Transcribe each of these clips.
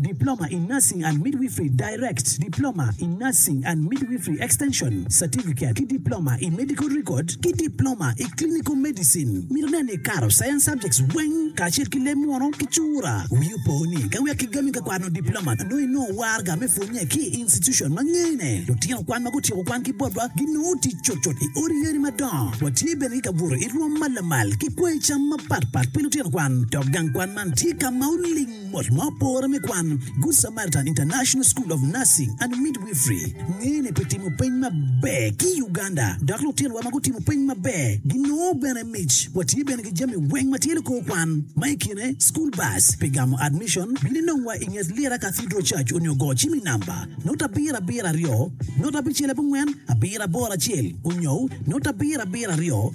Diploma in Nursing and Midwifery, Direct, Diploma in Nursing and Midwifery Extension, Certificate, ki Diploma i Medical Record ki Diploma i Clinical Medicine. Mito nen ni ikato Science subjects weng kacel ki leb munu ki cura. Wii opo ni ka wek kigami ka kwano Diploma nongo inongo warga me pwonye ki i institution ma ngene. Lutino kwan ma gutyeko kwan ki botwa ginongo tic cutcut i odi yadi madongo. Watye bene ki kabuto i rwom ma lamal ki kwanyi cam mapatpat pi lutino kwan dok gang kwan man tye ka ma oling. Mot ma opore me kwan, Good Samaritan International School of Nursing and Midwifery ngene pi timo peny maber ki i Uganda, dok lutinowa ma gutimo peny maber ginongo bene mic. Watye bene ki jami weng ma tye likor kwan, ma i kine school bus pi gamo admission, bino inongwa i nget Lira Cathedral Church onyo go cim i namba note abiro abiro aryo note abicel abongwen abiro aboro acel onyo note abiro abiro aryo.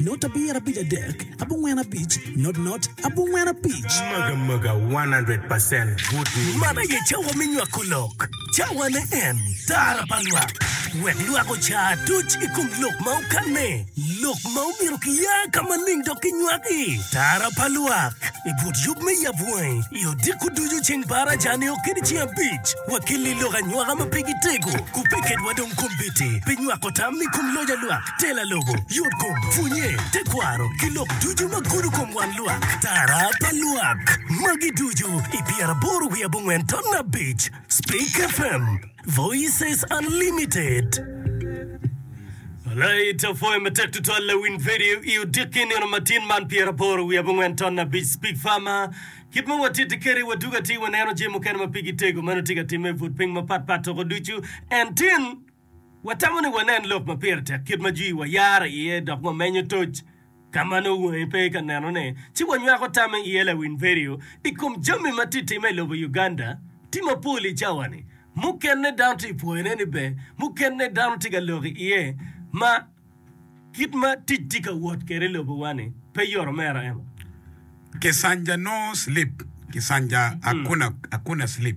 Not abir abic adek abongwen abic not not abongwen abic. Maga maga 100 percent good news. Man aye cawa me nywako lok. Cawane en Tara pa Lwak. Wek lwak oca atuc i kom lok ma okanne, lok ma omyero kiya ka maling dok kinywak i Tara pa Lwak i but yub me yab wangi i odiko ducu ceng par aca nio kede ceng abic. Wakelli lok anywaka ma pe gitego, kubbe kedwa dong kombeddi pi nywako tam i kom loc a lwak. Tela lobo, yotkom, pwonye, tekwaro, ki lok ducu ma gudo kom wan lwak, tara pa lwak. Magi ducu i pyeraboro wiye abongwen ton abic. Speak FM, Voices Unlimited. Alait apwoyo matek tutwal lawiny radio i odiki nino matin man pyeraboro wiye abongwen ton abic. Speak FM, kit ma watiti keri wadug atir waneno jami mukene ma pigi tego meno tye ka timme i but piny mapat pat toko ducu. En tin. Watamo ni wanen lok ma pire tek kit ma jwiwa yare iye dok wamenyo toc ka ma nongo wangi pe ka nenone, ci wanywako tamme iye. Lawiny vidio i kom jami ma tye ka timme i lobo Uganda tye mapol i cawa-ni. Mukene dano tye ka pwoyone ni ber, mukene dano tye ka lok iye ma kit ma tic tye ka wot kwede i lobowa-ni pe yot mere. Emma. Kisanja no slip, Kisanja akuna akuna slip.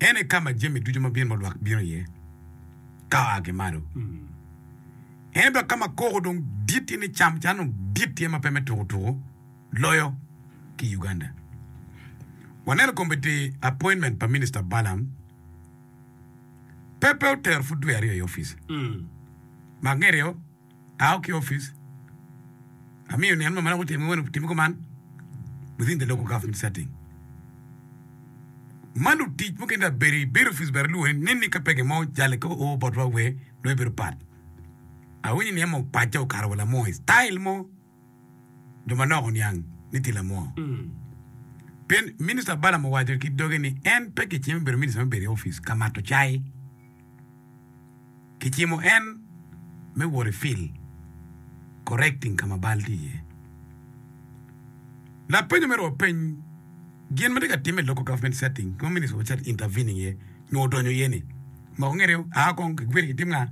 En aye ka ma jami ducu ma bino ma lwak bino iye ka oa ki malo. En dok ka ma koko dong dit iye ni cam can dong dit iye ma pe me tuku tuku loyo ki i Uganda. Waneno komitti appointment pa Minista Balaam pe pe otero pud dwe aryo i opice. Mak ngeto iye. Ao ki opic amiyo nen ma maloko otim ki wene otim kuman within the local government setting. Ma lutic mukene dong abedo i bedo opic bene alwongo ni nen ni ka pege mo jale ka oo botwa wee loyo bedo pat. Awinyo ni en mupace okato wa lamo i style mo. jo manok oniang ni tye lamwoo. Pien Minista Balaam owaco ki doge ni en pe kicimo bedo minista me bedo i opic ka mato cai. Kicimo en me wot i fil, correcting, ka ma bal tye iye. Lapenyo mere openy gin ma tye ka timme i local government setting ki ma minista obiset intervening iye nyo odonyo iye ni, moko ngete aa kong, kigwiri kitim nga?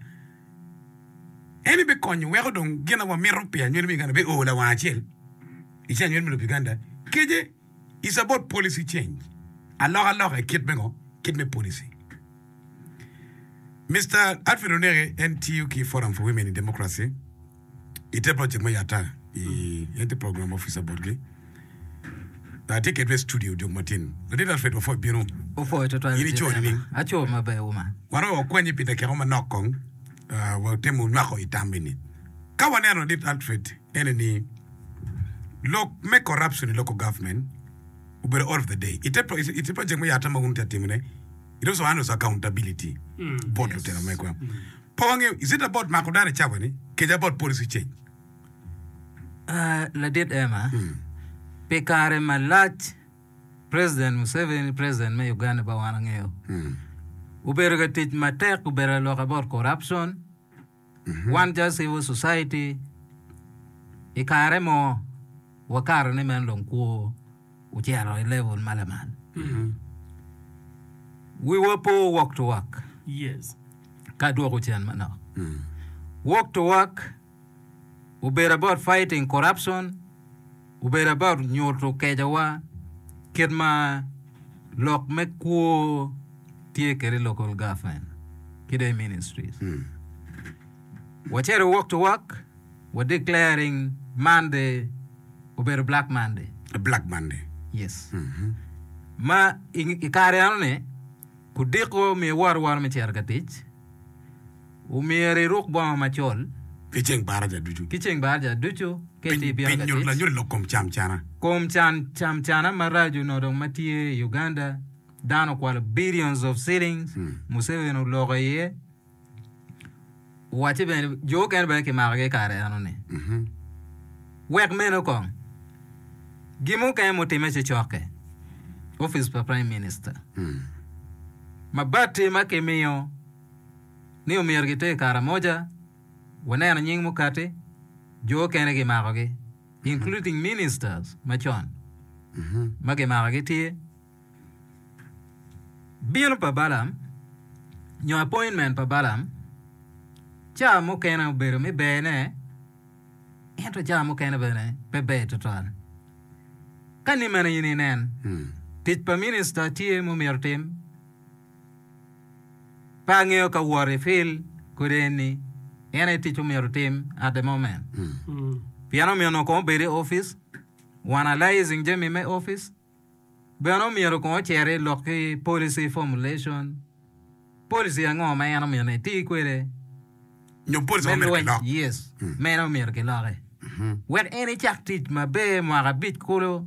En ebikonyo weko dong gin ma wamito pi anywel me Uganda be oo lawang acel i ceng anywel me lobo Uganda kece is about policy change aloka loka i kit me ngo kit me policy Mister Alfred Oneke en tiyo ki forum for women in democracy I te project me yatta i en tye program officer botgi. Atye kedwa i studio jok matin. Latit Alfred Wafoy bino. Wafoy tutwal. In ico nining? Aco maber uma. Waromo wakwanyi pi dakika manok kong. Uh, watemo nywako i tam eni. Ka waneno Latit Alfred ene ni lok me corruption i local government obedo all of the day. Ite, ite project me yatta ma wun tye atimone, It also handles accountability bot lutino megwa. Pe wangeyo, is it about mako dano i cawa ni kece about policy change? Ah, ladit Emma, pi kare malac President Museveni, President me Uganda ba wan wangeyo, obedo ka tic matek, obedo ka lwok about corruption, Wan calo Civil Society, i kare mo wakato ni meno dong kwo ocito i level ma lamal. Wiwa po walk to work Yes. ka dwoko cen manok. Walk to work obedo about fighting corruption, Obedo about nyuto kecowa kit ma lok me kwo tye kwede i local government ki dong i ministries. Wacito walk to walk, wa declaring Monday obedo Black Monday. Black Monday. Yes. Ma i, i kare eno ni kudiko omiyo woro woro me cito ka tic, Omyero iruk bongo macol. Ki ceng baraja ducu. Ki ceng baraja ducu. Pi nyuto lanyut lok kom cam cana. Kom can cam cana maraco no dong ma tye i Uganda, dano okwalo billions of shillings, Museveni oloko iye, owacce bene jo okene bene kimakogi i kare eno ni. Wek meno kong, gin mukene mutimme ci cokke, office pa prime minister, ma batti ma kimiyo ni omyero giter Karamoja, waneno nying mukati, jo okene gimakogi, including ministers macon ma gimakogi tye, bino pa Balaam nyo appointment pa Balaam ca mukene obedo me berne ento ca mukene bene pe ber tutwal. Ka ni mene in inen, tic pa minister tye ma omyero otim. Pe angeyo ka wot i fil kodi eni en aye tic omyero otim at the moment. Pien omyero onongo kong obed i office, wanalizing jami me office. Bene omyero kong ocer i lok ki policy formulation. Policy ango ma en omyero eti kwede Nyo policy ma me omyero lweny? kilok. Yes, meno omyero kiloke. Wek en icak tic maber mwaka abic kulu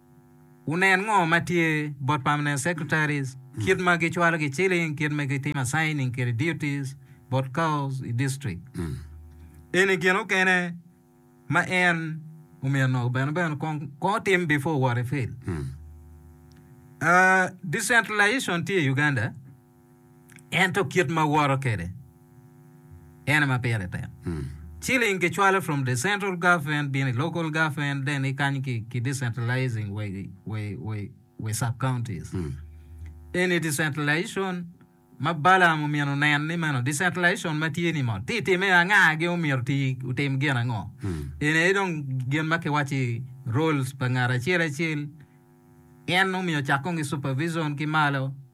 Wunen ngo ma tye bot permanent secretaries kit ma gi cwalo gi ciling kit ma gi timo assigning kede duties bot cows i district. Eni gin okene ma en omyeno bene bene kong kong otim before wot i field. Decentralization tye i Uganda. Ento kit ma woto kwede en aye ma pire tek. Ciling kicwalo from the central government bino i local government then i kany ki decentralizing we sub counties. Eni decentralization ma Balaam omyeno onen ni meno decentralization ma tye ni mot. Ti itime anga gin omyero ti otim gin ango. Eni aye dong gin ma kiwaci roles pa ngat acel acel. En omiyo cak kong ki supervision ki malo.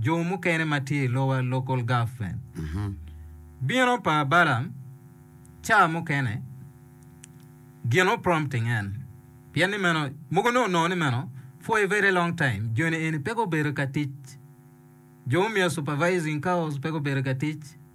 jo mukene ma tye i lowa, local government. Bino pa Balaam ca mukene gin o prompting en, pien ni meno, mogo nongo nongo ni meno, for a very long time, joni eni pe gubedo ka tic. Jo mumiyo supervising cows pe gubedo ka tic.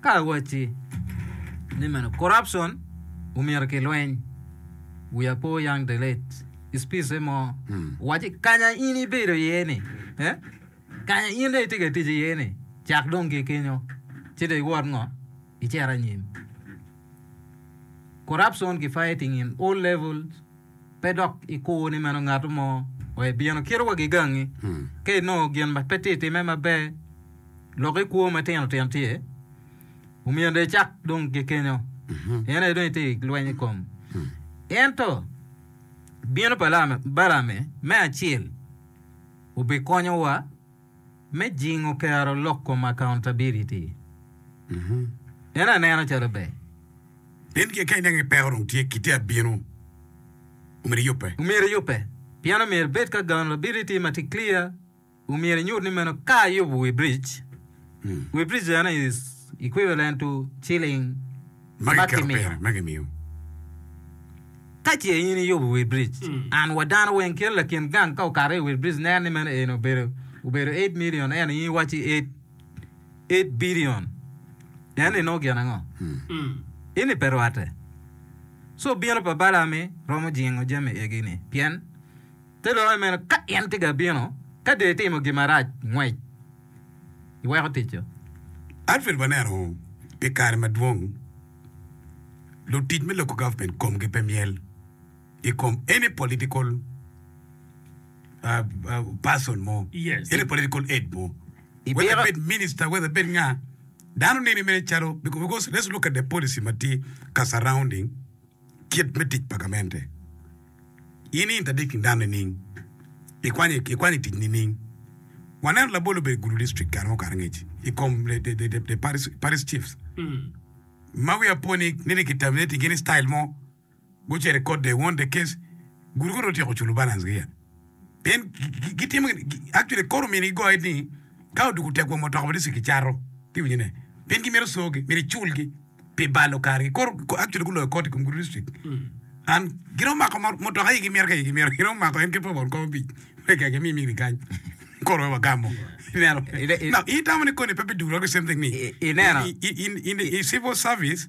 Ka awacci ni meno corruption omyero ki lweny, we are poor young the late speech mo owacci kanya in ibedo iye ni eh kanya in dong itye ka tic iye ni cak dong ki kenyo ci dong iwot ngo icit anyim. Corruption ki fighting in all levels. pe dok ikur ni meno ngato mo wa ibino kito wagi gangi. Hmm. Ka inongo gin ma pe tye time maber, lok i kwo matino tino tye, omiyo de cak dong gikenyo. Hmm. En aye dong itye lweny i kom. Hmm. Ento bino pa Balame me acel obikonyowa me jingo kero lok kom accountability en aneno calo ber. Pien gin ka ineno ni peko dong tye, kite a bino, omyero iyubbe. Omyero iyubbe, pien omyero ibed ki accountability ma tye clear, omyero inyut ni meno ka ayubo wi bridge, wi bridge eno is equivalent to shilling. ma kimiyo. Ka ce in iyubo wi biric, and wa dano weng kit lakin gang ka okato i wi biric neno ni meno en obedo obedo eight million ento in iwacci eight eight billion neno ni nongo gin ango? Ini pe rwatte. Co bino pa Balami romo jingo jami egi-ni pien te loyo meno ka en tye ka bino ka dong itimo gin marac ngwec. iweko ticca. Alfred waneno pi kare madwong lutic me local government komgi pe myel i kom any political person mo, any political aid mo, whether ebed minister, whether ebed nga, dano nene mere calo because let's look at the policy ma tye ka surrounding. Kit me tic pa gamente. In i intadik nidano nining? Ikwanyo i tic nining? Waneno labol obedo i Gulu District kare mo karangec i kom the Parish Chiefs ma wiya po ni nongo ki terminating gi ni style mo, gucito i kot, they won the case, Gulu kong dong otyeko culo balance gi ya. Pien gitimo gin, actually kor omyero gigoye ni ka odwogo tegwom mutoka bene ci kicato. Iwinyo ne? Pien gimito cogi, myero iculgi pi balo kargi. Kor, actually guloyo koti i kom gudo district. An, gin omako mo- mutoka igi myero ka igi myero, gin omako en kit pa won kom abic me keke mi mini kany. Kor wek wagamo. Ineno? Ine- ine- Now, in itamo ni koni pe biduro ki same thing ni? I- ineno? I- i- in, in, i civil service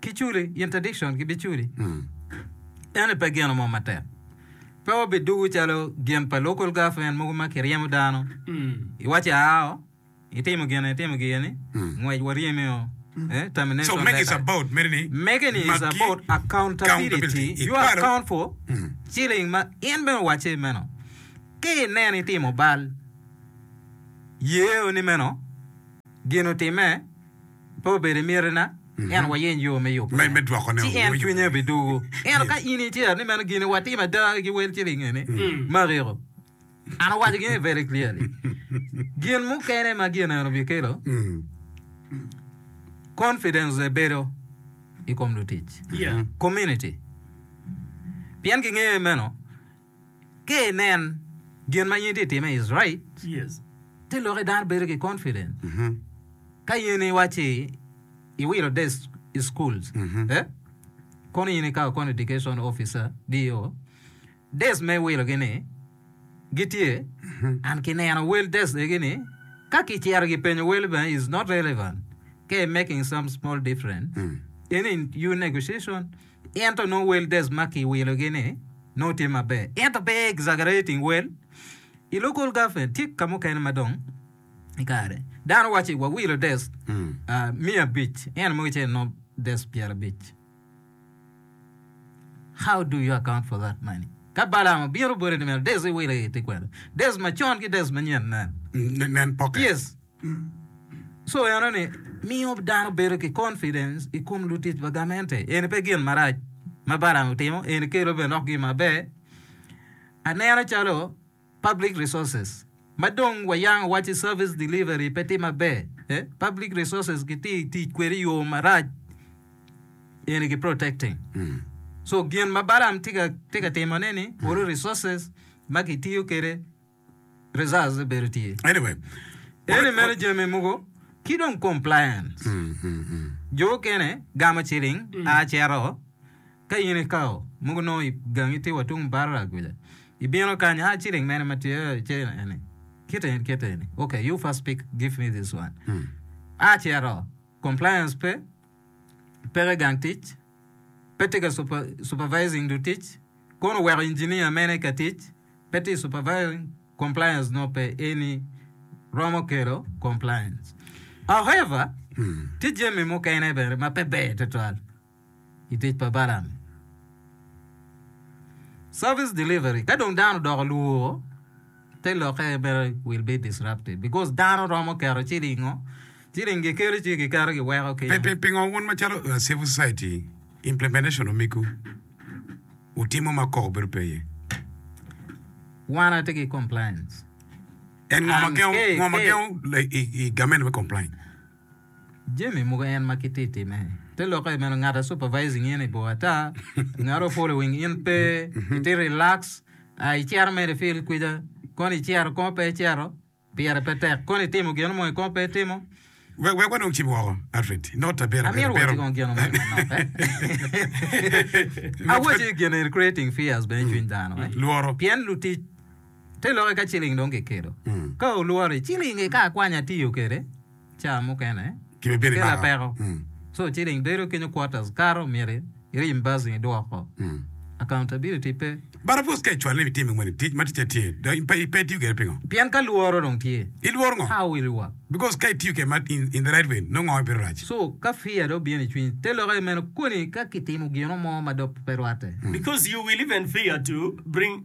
ki culi, interdiction ki biculi. Ene pe gino mo matek. Pe wabi dugu calo gin pa local government mogo ma kiryemo dano. Iwaco ao, itimo gin itimo gin ni, ngwec waryemi o. Eh, So termination make is letter. about mere ni Make ni is magi about accountability. accountability. You Ipalo? account for shilling ma in bene owacce meno. Ki ineno itimo bal, yeo ni meno gin otimme, Pe obed i mitina, ento wayeny yo me yubo en, ci en cwinye bidugo. Ento ka in icer ni meno gin watimo ada ki wel ciling eni, mariko, an awaco gini very clearly, gin mukene ma gin eno bikelo, confidence the bedo i kom lutic, community, pien gingeyo meno. Ka inen gin ma in itye ka timme i Straits, ci lok i dano bedo ki confidence. Ka in iwacci iwilo day schools, kono in ikawo kono education officer, DO, days me wilogi ni gitye and ki neno wel days egi ni ka ki cito ki penyo wel bene is not relevant ka i making some small difference in in your negotiation. Ento nongo wel Des ma kiwilogi-ni nongo tye maber. Ento pe exaggerating wel i local government tye ka mukene ma dong i kare dano waco ni wawilo Des miya abic, ento mogo ice nongo Des pyerabic. How do you account for that money? Ka Balaam obino obole ni meno Des iwilo i te kwena. Des macon ki Des manyen nen. Nen pocket. Yes. Co enoni miyo dano bedo ki confidence i kom lutic pa gamente. Eni pe gin marac ma Balaam otimo, eni kelo bene lok gin maber. Aneno calo public resources ma dong wayango waci service delivery pe tye maber. Eh, public resources kitye i tic kwede i yo marac, eni ki protecting. So gin ma Balaam tye ka, tye ka timone-ni, olo resources ma kitiyo kwede results bedo tye. Anyway, Eni mere jami mogo ki dong compliance. Jo okene gamo ciling a cito ka in ikao mogo nongo igangi tye wa tung barra kuca. Ibino kany a ciling mene ma tye ce eni. Kite eni kite eni. Okay, you first pick give me this one. A cito compliance pe peke gang tic, pe tye ka supervising lutic, kono oweko engineer mene ka tic pe tye supervising compliance nongo pe eni romo kelo compliance. However, hmm. tye jami mukene bene ma pe ber tutwal i tic pa balam. Service delivery, ka dong dano odoko luwo Te lokke mere will be disrupted because dano romo keto cilingo, ciling gikelo ci giketo giweko ki. Pingo wun macalo civil society implementation omiku wutimo ma koko bedo pe iye? Wan atye ki complains. En ngo ma gengo i government me complain? Jami mogo en ma ki ti time. Te lokke meno ngat a supervising in i bor ata, ngat o following in pe, i ti relax, a i cero mere i field kwica, kono i cero kono pe i cero, pire pe tek, kono i timo gino mo i kono pe i timo. Wek wek wanong cib woko, Alfred. Not ta bero Amito bero waci bero. kong gino mo i ma nokke. Not ta- Awaci gin eni creating fears bene i cwiny dano, eh? Lworo. Pien lutic Te lokke ka ciling dong kikelo. Ka olwori, ciling eka akwanya atiyo kwede caa mukene ki lapeko. So ciling bedo kenyo quarters kato myero ireimbursing idwoko. Accountability pe. But of course ka icwalo ni itimo moni tic ma ticce tye do in pe itiyo kwede pingo? Pien ka lworo dong tye. Ilworo ngo? How will you work? Because ka itiyo kwede in the right way nongo bino rac. So ka fear dong obino icwiny, te lokke meno koni ka kitimo gino mo ma dok pe rwatte. Because you will even fear to bring.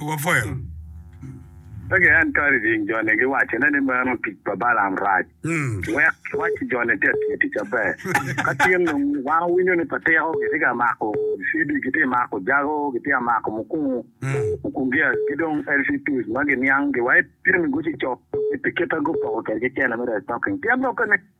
Wapwoyo. Wek en kadi jing joni giwacone ni meno tic pa Balaam rac. Wek kiwac ki joni te tiyo tic aber. Ka tin dong wan wawinyo ni patiko gitye ka mako CD gitye mako jago gitye ka mako mukungu mukung gia ki dong LC tools ma giniang gi wa epyem i gucicok pi kita gupoko kwedgi cene me restocking pien lok kene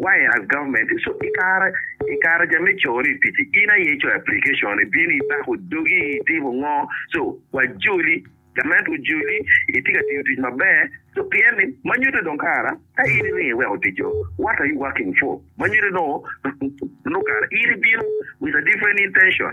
Wire as government is so ikare ikare ja me cone i pici in aye icoyo application i bino i bako dogi i timo ngo so wa joli gament ojoli itye ka tiyo tic maber so pien ni ma nyuto dong kara ka in iringo iweko tic o what are you working for ma nyuto dong nongo kara in ibino with a different intention.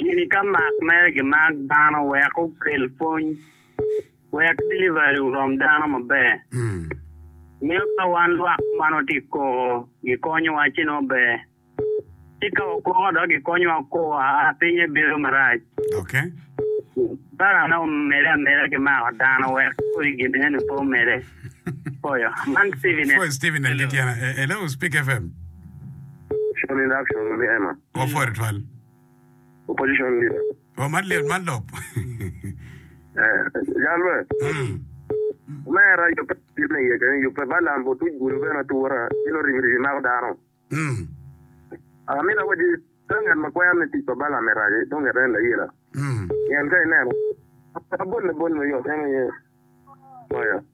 Gini ka mak mere gimak dano wek okel pwony, wek delivery orom dano maber. Miyo ka wan lwak ma nongo tye koko gikonyowa ci nongo ber. Ci ka wakoko dok gikonyowa koko aa pinye bedo marac. Parane omedde ameda ki mako dano wek kodi gin eni pe omedde. Poyo. Man Steven en. Wa pwod twal. Opposition leader. Wa man lyel man lok. Eh, jal me. Mm. Mera yubbe yub me yece, yubbe balam bo tuj gulu bene atura, ilo ribi ribi mako dano. Mm. Amina wadi, ka ngat ma kwero ni tic pa balam e raci, dong ngat en layila. Mm. Pien ka ineno, abol abol me yot en aye. Oya.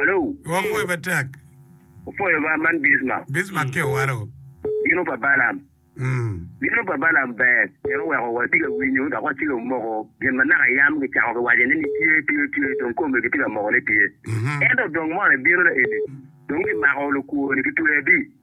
Alo. Wapwoyo matek. Wapwoyo ba man Bismarck. Bismarck ki owalo. Bino pa Balaam. Bino pa Balaam ber pien oweko watye ka winyo dok watye ka moko gin ma naka yam kicako kiwaco ni nitye tye tye dong kome kitye ka moko ni tye. Ento dong mono ebino na eni dong kimako lukwoni kitweyo adi?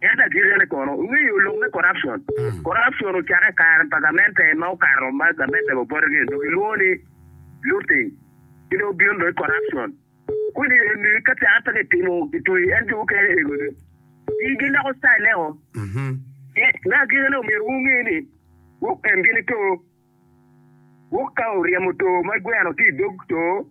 Ento agikine kono, wungeyo lok me corruption? Corruption ocakke i kare pa gamente ma okato ma gamente bene opoti gin dong gilwongo ni looting ci dong bino dong corruption. Koni eni ka cakke pe kitimo kitweyi en jo mukene ego dong gi giloko style ne o. Me agikine omyero wunge ni gwok en gini too. Gwok ka oryemo too ma gweno tye idog too,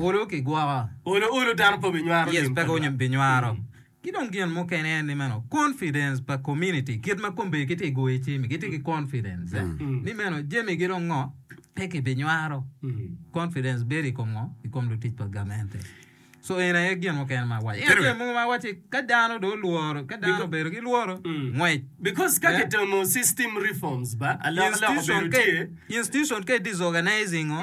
Olo ki gwoko. Olo olo dano pe obinywaro lim pa Lwak. Yes, pe obinywaro. Ki dong gin mukene en ni meno confidence pa community kit ma kombe gitye ka goyo cim, gitye ki confidence ni meno jami gi dong ngo pe kibinywaro. Confidence bedo i kom ngo? I kom lutic pa gamente. So eni aye gin mukene ma awaco. Ento jami mogo ma awaco ni ka dano dong olworo, ka dano obedo ki lworo, ngwec. Because ka kitemo system reforms ba, alok alok obedo tye. Institution ka i disorganizing ngo?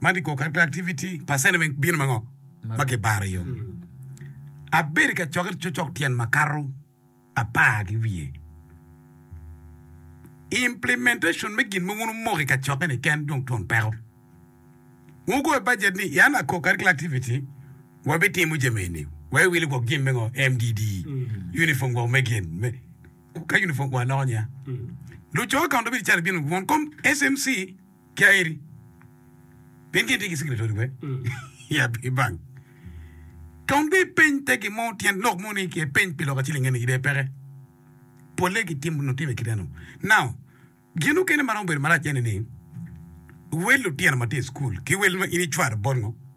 ma kikobo kadi pe activity percent me bino ma ngo ma kibaro iyo. Abedo ka cokke cocok tyen makato apar ki wiye. Implementation me gin ma wun wumoko i kacokke ni ken dong twon peko. Wun wugoyo budget ni yan ako kadi kla activity wabitimo jami eni wa iwilo gwok gin me ngo MDD uniform gwok me gin me ka uniform wa loko nya luco accountability calo bino won kom SMC Kia iri. Pien gin tye ki sikiri todi wek ya pe ibang. Tong bi peny te gin mo tyen lok mo ni ke peny pi lok aciling eni ide peke. Pole ki tim no time kite no. Now, gin okene maromo bedo marac ene ni wel lutino ma tye i school ki wel ma in icwar bot ngo?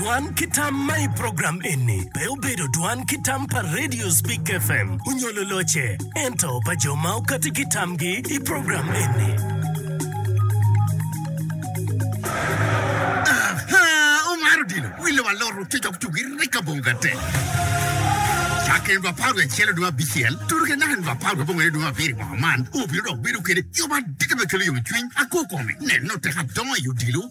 Dwan ki tam ma i program eni pe obedo dwan ki tam pa Radio Speak FM onyo lulocce, ento pa jo ma okati ki tamgi i program eni. Omar Odilo wille wa loro tic dok tugi rek ka bongo ka te. Cake en ba par acel dong abicel, tutu ke naka en ba par bongo ne dong abiri bongo man, obiro dok bedo kede yo madit me kelo yom cwiny, ako kome, neno teka dongo i odilo,